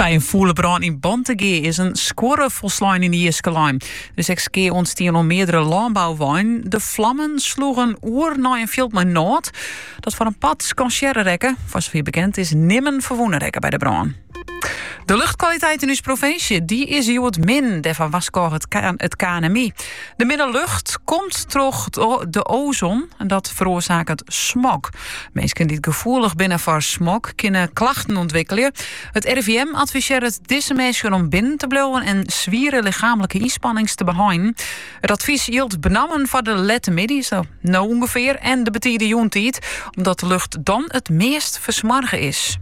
By in fûle brân yn Bantegea is in skuorre folslein yn de jiske lein. Der is ek skea ûntstien oan meardere lânbouweinen. De flammen sloegen oer nei in fjild mei nôt, dat foar in part skansearre rekke. Foar safier bekend is nimmen ferwûne rekke by de brân. De luchtkwaliteit in ús provinsje die is hjoed min, dêrfoar warskôget it KNMI. De minne lucht komt troch de ozon en dat feroarsaket smog. Minsken dy't gefoelich binne foar smog kinne klachten ûntwikkelje. It RIVM advisearret dizze minsken om binnen te bliuwen en swiere lichaamlike ynspannings te beheinen. It advys jildt benammen foar de lette middeis, no ûngefear, en de betide jûntiid, omdat de lucht dan it meast fersmoarge is.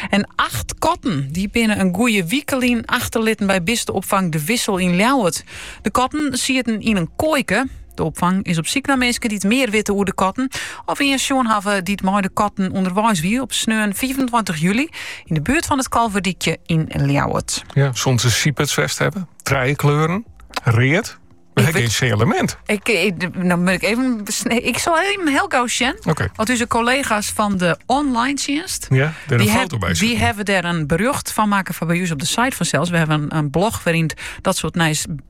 En acht katten die binnen in goede wike lyn achterlitten by bisteopfang De Wissel yn Ljouwert. De katten sieten yn in koaike. De opfang is op syk nei minsken dy't mear witte oer de katten. Of ien sjoen hawwe dy't mei de katten ûnderweis wie op sneon fiifentweintich july yn de buert fan it Kalverdykje yn Ljouwert. Ja, soene se sypersk west hawwe. Trije kleuren. Read. Wy hawwe gjin sinjalemint. Ik, ik, no moat ik even. Ik sil even hiel gau sjen. Okee. Want ús kollega's fan de online tsjinst. Ja, dêr in foto by. Dy hawwe dêr in berjocht fan makke fan by ús op de site fansels. Wy hawwe in, blog wêryn dat soart nijs